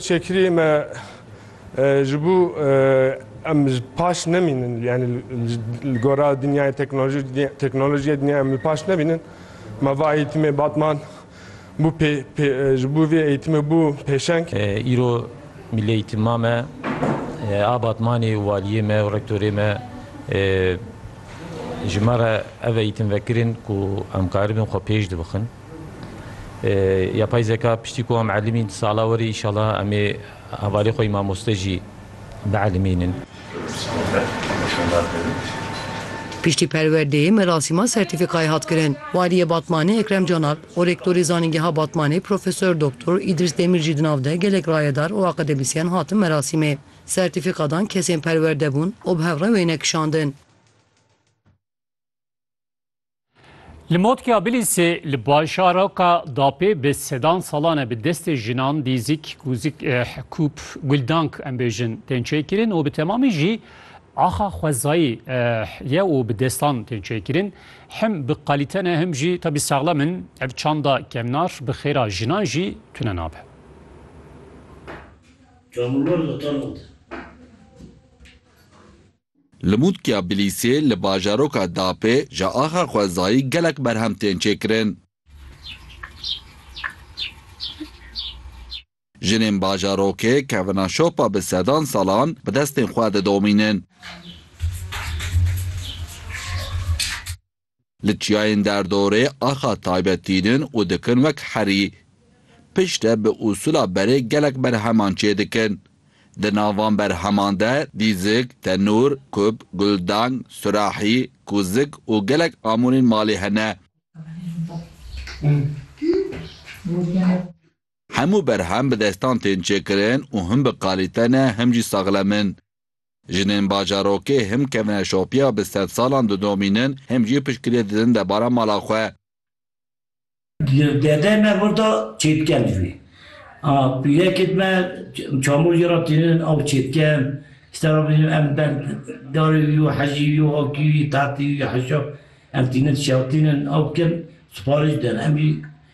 Çêkiriyê me ji bo em paş nemînin yanî li gora dinyayê teknolojiyê dinyayê em li paş nemînin me va eğîtimê Batman bû ji bo vê eğîtimê bû pêşeng. Îro Milli Eğîtima me a Batmanê û Waliyê me û Rektorê me ji me re ev eğîtim vekirin ku em karibin xwe pêş dibixin. Yapay zeka piştî ku em elîmîn sala werî înşala em ê hevalê xwe yî mamoste jî bielîmînin. Piştî perwerdeyê merasîma sertîfîkayê hat kirin. Waliyê Batmanê Ekrem Canalp û Rektorê Zanîngeha Batmanê Profesor Doktor Îdris Demîr jî di nav de gelek rayedar û akademîsyen hatin merasîmê. Sertîfîka dan kesên perwerde bûn û bi hev re wêne kişandin. Li Motkiya Bilîsê li bajaraka Dapê bi sedan salan e bi destê jinan dîzik, kûzik, eh, kûp, guldank em bêjin tên çêkirin û bi temamî jî axa xwezayî eh, ye û bi destan tên çêkirin. Him bi qalîte ne him jî tabî saxlem in. Ev çanda kemnar bi xêra jinan jî tune nabe. Çamurlar da tano de. Li Mûtkiya Bilîsê li bajaroka Dapê ji axa xwezayî gelek berhem tên çêkirin. Jinên bajarokê kevina şopa bi sedan salan bi destên xwe didomînin. Li çiyayên derdorê axa taybet tînin û dikin wek herî. Piştre bi usûla berê gelek berheman çê dikin. Di nav van berheman de dîzik, tenûr, kub, guldang, surahî, kûzik û gelek amûrên malê hene. Hemû berhem bi destan tên çêkirin û him bi kalîte ne him jî saxlem in. Jinên bajarokê him kevine şopiya bi sedsalan didomînin him jî piştgirê didin debara mala xwe. Dede me gorta çêtken dijwî. A pîrekê dime çamurcê ra tînin aw çêtken, stera bînin em ben darê wî yo, hejî wî yo, akî wî, tahtê wî, heşa em tînin şewtînin aw dikin, siparîş didin. Em jî.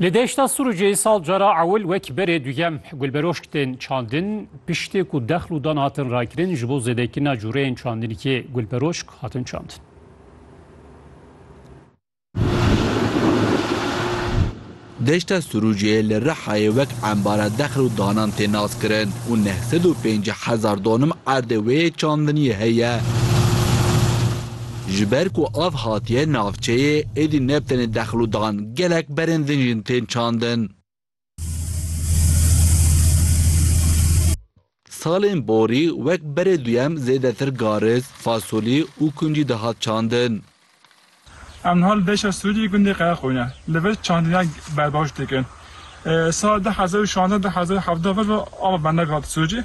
Li deşta Sûrûcê sal cara ewil wek berê duyem gulberoşk tên çandin piştê ku dexl û dan hatin rakirin ji bo zêdekirina cûreyên çandinîkê gulberoşk hatin çandin. Deşta Sirûcê li Rihayê wek embara dexil û danan tê naskirin û neh sed û pêncî hezar donim erdê wê yê çandiniyê heye. Ji ber ku av hatiye navçeyê êdî ne bi tenê dexil û dan gelek berên din jin tên çandin. Salên borî wek berê duyem zêdetir garis, fasolî û kuncî dihat çandin. Em niha li deşa Sûrî yê gundê Qeyaxoyne li vir çandina berbaş dikin. Sala du hezar û şazdeh-du hezar û hevdeh vir ve ava bendek hat Sûrî.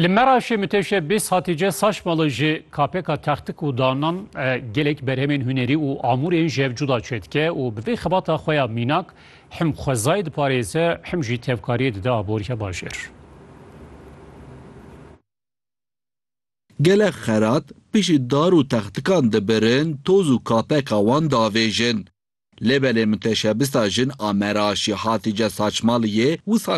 Li Meraşê Miteşe Bês Hatîce Saçmalı ji KPKa textik û danan gelek berhemên hunerî û amûrên ji hev cuda çêdike û bi vê xebata xwe ya mînak him xwezayê diparêze him jî tevkariyê dide aboriya bajêr. Gelek xerat pişî dar û textikan dibirin toz û KPKa wan diavêjin. Lê belê miteşebista jin a Meraşê Hatîce Saçmaliyê wisa